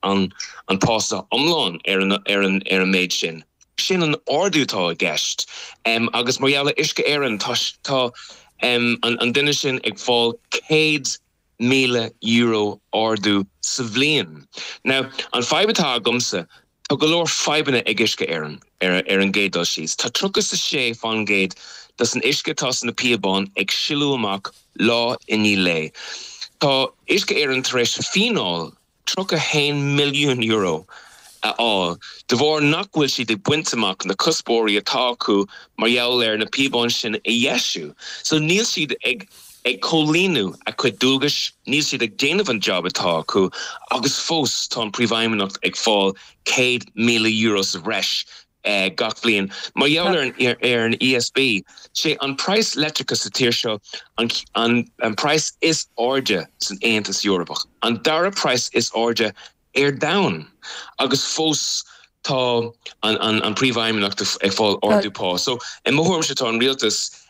an pá iomlán ar an méid sin. Sin an ardú atá i gceist agus mar gheall ar Uisce Éireann tá an duine sin ag fáil €100,000 ardú sa bhliain. Now, an fadhb atá agamsa, tá go leor fadhbanna ag Uisce Éireann ar an gcéad dul síos. Tá tríocha is a sé fán gcéad de an uisce atá sna píobáin ag sileadh amach lá i ndiaidh lae. Tá Uisce Éireann tar éis fíneáil. €31 milliún a fháil de bharr nach bhfuil siad ag baint amach na cuspóirí atá acu mar gheall ar na píobáin sin a dheisiú. So níl siad ag ag comhlíonadh a gcuid dualgais, níl siad ag déanamh an job atá acu agus fós tá an Príomhfheidhmeannach ag fáil €100,000 sa bhreis gach bliain. Mar gheall ar an ESB, sé an praghas leictreachais sa tír seo an praghas is airde san Aontas Eorpach, an dara praghas is airde ar domhan, agus fós tá an príomhfheidhmeannach ag fáil ardú pá. So, i mo thuairimse, tá an rialtas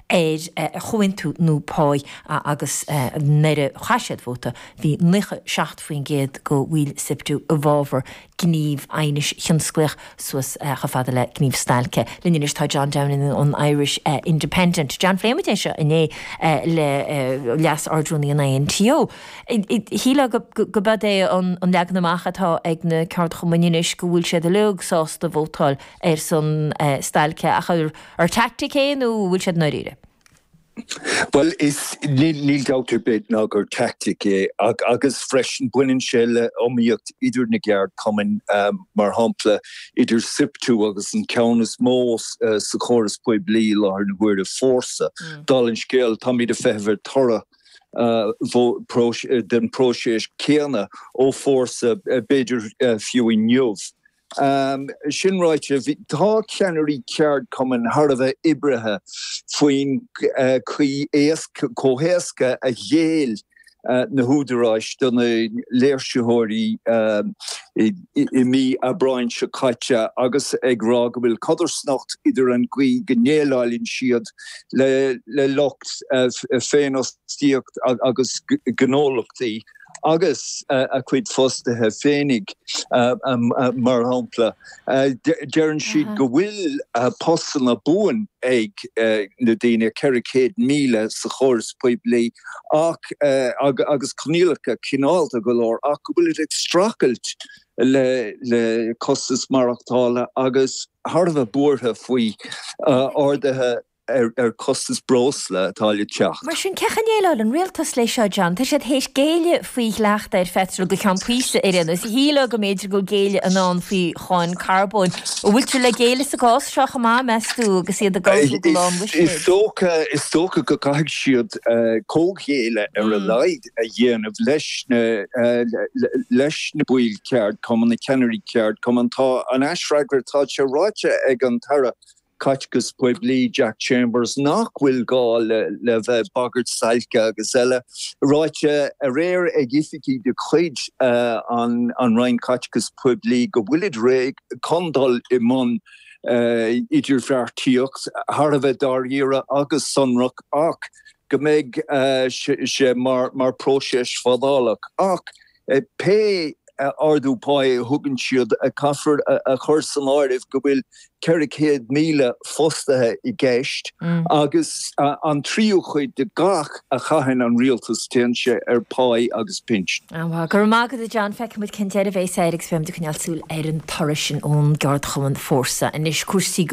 ar chomhaontú nua pá agus nuair a chaith siad vóta bhí 97% de bhaill Siptu i bhfabhar gníomh aighnis thionsclaíoch suas chomh fada le gníomh stailce. Linn anois tá John Downing ón Irish Independent. John, phléigh muid é seo inné le Leas-Ardrúnaí an INTO. Shílfeá gurb é an leagan amach atá ag na ceardchumainn anois go bhfuil siad uilig sásta vótáil ar son stailce ach An teaictic é nó bhfuil siad i ndáiríre? Bhuel, níl dabht ar bith ná gur teaictic é agus freisin baineann sé le iomaíocht idir na gceardchumainn, mar shampla idir Siptu agus an ceann is mó sa chóras poiblí i láthair na huaire, Fórsa. Dála an scéil, táimid ag feitheamh ar toradh den phróiseas céanna ó Fórsa, b'fhéidir fiú inniu. Sin ráite, tá ceannairí ceardchumainn thar a bheith oibrithe faoin gcaoi chomh héasca a ghéill na húdaráis do na léirsitheoirí i mí Aibreáin seo caite agus ag rá go bhfuil codarsnacht idir an gcaoi go ndéileáileann siad le lucht féinfhostaíochta agus gnólachtaí. agus a gcuid fostaithe féinig, mar shampla, deireann siad go bhfuil postanna buan ag na daoine, 400,000 sa chóras poiblí, ach, agus coinníollacha cineálta go leor, ach go bhfuilid ag streachailt le costas maireachtála agus thar a bheith buartha faoi arduithe ar chostas breosla atá le teacht. Mar sin, cén chaoi a ndéileálfaidh an rialtas leis seo, John? Tá siad théis géilleadh faoi dhleacht ar pheitreal go ceann píosa ar aon nós, shílfeá. B'fhéidir go bhfuil géilleadh i ndán faoi cháin carbóin. An bhfuiltear le géilleadh sa gcás seo chomh maith, meas tú, agus iad ag ullmhú? Is dócha go gcaithfidh siad comhghéilleadh ar a laghad a dhéanamh leis na, leis na baill ceardchumainn, na ceannairí ceardchumainn. Tá an t-aisfhreagra, tá sé ráite ag an tAire Caiteachais Phoiblí Jack Chambers nach bhfuil gá le bheith ag bagairt stailce agus eile. Ráite aréir ag oifigigh de chuid na Roinne Caiteachais Phoiblí go bhfuil siad réidh chun dul i mbun idirbheartaíocht thar a bheith dáiríre agus sonrach ach go mbeidh sé mar phróiseas fadálach. Ach. Pé ardú pá a thugann siad, caithfear a chur san áireamh go bhfuil 400,000 fostaithe i gceist agus an tríú chuid de gach a chaitheann an rialtas, téann sé ar phá agus pinsean. Go raibh maith agat a John, feicfidh muid cén deireadh a bhéas air agus beidh muid ag coinneáil súil ar an toradh sin ón gceardchumann Fórsa anois. Cúrsaí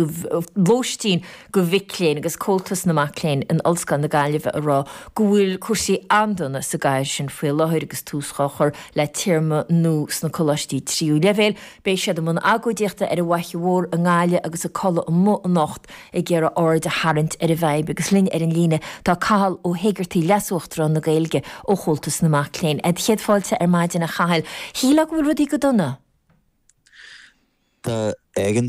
lóistín. do mhic léinn agus Comhaltas na Mac Léinn in Ollscoil na Gaillimhe a rá go bhfuil cúrsaí an-dona sa gcathair sin faoi láthair agus tús dhá chur le téarma nua sna coláistí tríú leibhéil. Beidh siad i mbun agóidíochta ar an bhFaiche Mhór i nGaillimh agus ag codladh amuigh anocht ag iarraidh aird a tharraingt ar an bhfadhb agus linn ar an líne tá Cathal Ó hÉigeartaigh, Leas-Uachtarán na Gaeilge ó Chomhaltas na Mac Léinn. 'Sé do chéad fáilte ar maidin a Chathail. Shílfeá go bhfuil rudaí go dona? Tá éigeandáil.